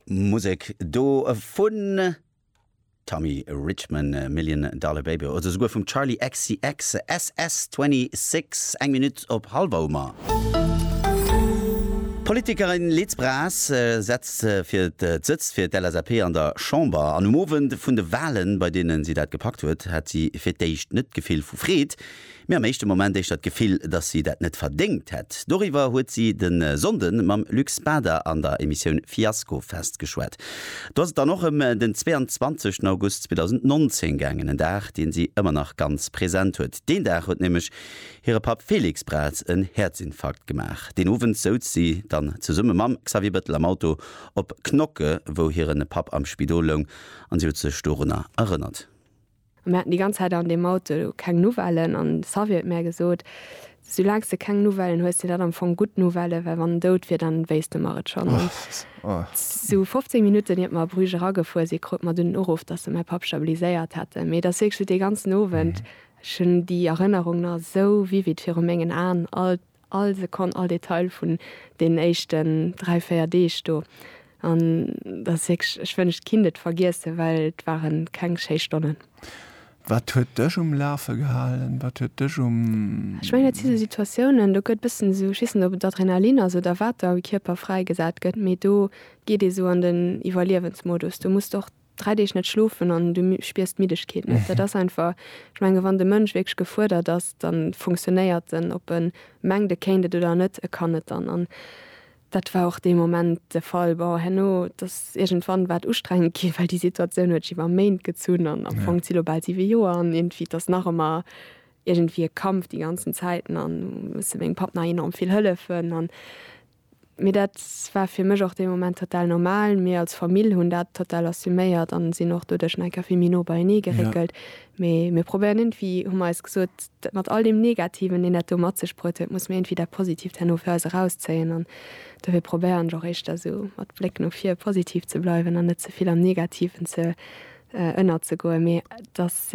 Musek do vun Tommy Richman, Million Dollar Baby oder souguer vum Charli XCX, SS26, eng Minutt op hallef Oumer. D'Politikerin Liz Braz setzt fir d'Sëtzt fir d'LSAP an der Chamber an um Owend vun de Walen, bei deenen si dat gepackt huet, hat si fir d'éischt net d'Gefill vu Freed, Mir am éischte Moment éischter d'Gefill, dass si dat net verdéngt hätt. Doriwwer huet si de Sonnde mam Luc Spada an der Emissioun Fiasko Fest geschwat. Do ass et dann och ëm den 22 August 2019 gaangen, en Dag, dee si ëmmer nach ganz present huet. Deen Dag huet nämlech hire Papp Félix Braz en Häerzinfarkt gemaach. Deen Owend souz si dann zesumme mam Xavier Bettel am Auto op Knokke, wou hire Papp am Spidol loung, an si huet sech dorunner erënnert. Mir haten déi ganz Zäit an deem Auto keng Nouvellen an de Xavier huet mär gesot, Soulaang s de keng Nouvellen hues, sinn dat am Fong gutt Nouvellen, well wann en dout wier, da wéisst e mer et schonn. An esou 15 Minutten iert mer a Bruges eragefuer si krute mer dunn den Uruff, dass se mäi Papp stabiliséiert hätten. Mee et ass wierklech sou dee ganzen Owend, ech hunn déi Erënnerung nach esou vivid viru mengen Aen, all. All Sekonn, all Detail vun deenen éischten dräi, véier Deeg do. An dat ass wierklech, ech wënscht, kinnt et vergiessen, well et ware keng schéi Stonnen. Wat huet dech um Lafe gehalen? Wat huet dech um. Ech mengen, dat si esou Situatiounen, do gëtt e bëssen esou, ech weess net, ob et Adrenalin ass oder wat da am Kierper fräigesat gëtt, mee do geet ee sou an den Iwwerliewensmodus. Do muss de och dräi Deeg net schlofen an du spiers d'Middegkeet net. Dat ass einfach, ech menge wann de Mënsch wierklech gefuerdert ass, da funktionéiert en, ob e mengt e kéint et oder net, e kann et dann. An dat war och dee Moment de Fall. Bon, herno, et ass iergendwann war et ustrengend ginn, well déi Situatioun huet sech iwwer Méint gezunn an am Fong zi lo bal siwe Joer an iergendwéi, et ass nach ëmmer iergendwéi e Kampf déi ganzen Zäiten an musse mengem Papp nach enorm vill hëllefen an Mee dat war fir mech och dee Moment total normal. Mir als Famill hunn dat total assuméiert an sinn och doduerch nach eng Kéier vill méi no beienee geréckelt. Yeah. Mee mir probéieren iergendwéi, hu mer eis gesot, dat mat all deem Negativen, deen dat do mat sech bruet huet, musse mir iergendwéi dat Positiivt herno fir eis erauszéien. An dofir probéieren ech och éischter esou mat Bléck no vir positiv ze bleiwen an net ze vill am Negativen ze ënnerzegoen. Mee et ass.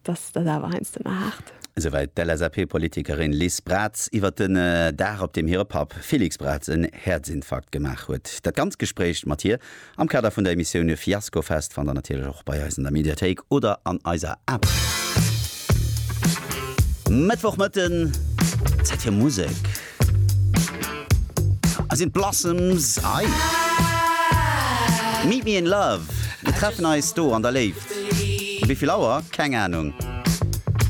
Dass ass awer heiansdo mar haart. Souwäit d'LSAP-Politikerin Liz Braz iwwer den Dag, op deem hire Papp Félix Braz en Häerzinfarkt gemaach huet. Dat ganzt Gespréich mat hir am Kader vun der Emissioun Fiaskofest fannt der natierlech och bei eis an der Mediathéik oder an eiser App. Mëttwochmëtten, Zäit fir Musek. Hei sinn d'Blossoms Ei Meet me in love Mir treffen eis do an der Léift Wéi vill Auer? Keng Ahnung.